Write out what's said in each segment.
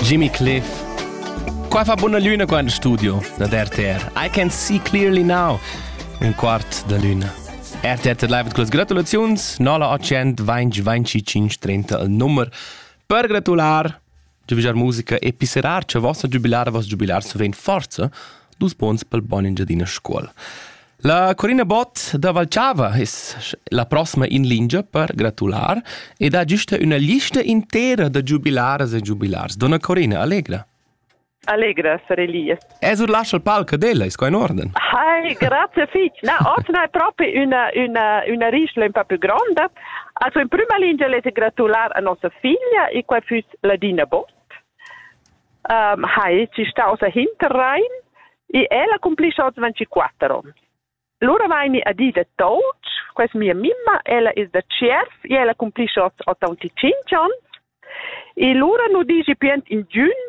Jimmy Cliff. Qua fa buna luna qua in studio da RTR. I can see clearly now. Un quart da luna. RTR live mit Gratulations. 0825 il numero per gratulare. Giubilar musica e pisserar, ce vossa giubilara, vos giubilar, se ven forza, dus bons pel bon Engiadina scuol. La Corina Bott da Valchava es la prossima in lingia per gratular ed ha güsta üna lista intera da giubilaras e giubilars. Donna Corina, allegra. Allegra sarei lì. Es ur lascia il palco della, ist qua in orden. Hi, grazie fich. Na, otna è proprio una, una, una rischla un po' più grande. Also in prima linea le grattulare a nostra figlia e qua fuss Ladina Bott. hai ci staus a Hinterrhein e el accomplischa oz 24 onns. Lura vaini a di da Touch, questa mia mimma, ella è da Tschierf e ella accomplischa oz 85 onns. E lura nu digi più in giun,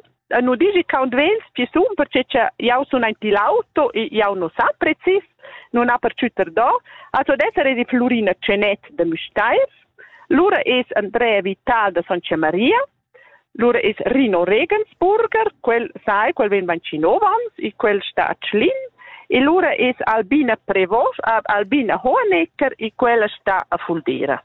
nu digi count vels ci sun, perché che jau sun aint l'auto e jau nu sa precis, nun ha per ciuter do, also d'essere di Florina Cenet de Müstair, lura es Andrea Vital da San Maria, Lura es Rino Regensburger, quel sai, quel vegn vancinovans e quel sta a Tschlin e lura es Albina Prevost, Albina Hohenecker e quella sta a Fuldera.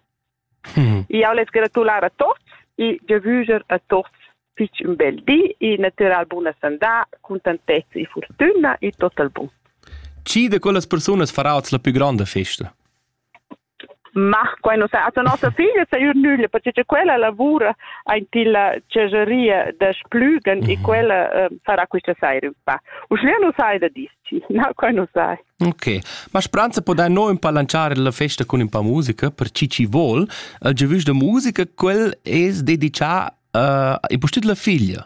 Mm. Io les gratular a tots e ge vüger a tots fich un bel di e natural buna sandà, contantezza e fortüna e tot al bun. Chi de quellas persunas farà oz la più grande festa? Mach quai nu sa. Ata nossa figlia saja nüglia, perche cha quella lavura aint illa tschegeria da Splügen e quella uh, sarà quista saira ün pa. Uschè nu sai da dis-chi. No, quai nu sai. Ok, ma spranza podain no ün pa lanciare la festa cun ün pa musica, per chi chi vol. Il giovüsch da musica, quel es dedichà uh, e pustit la figlia.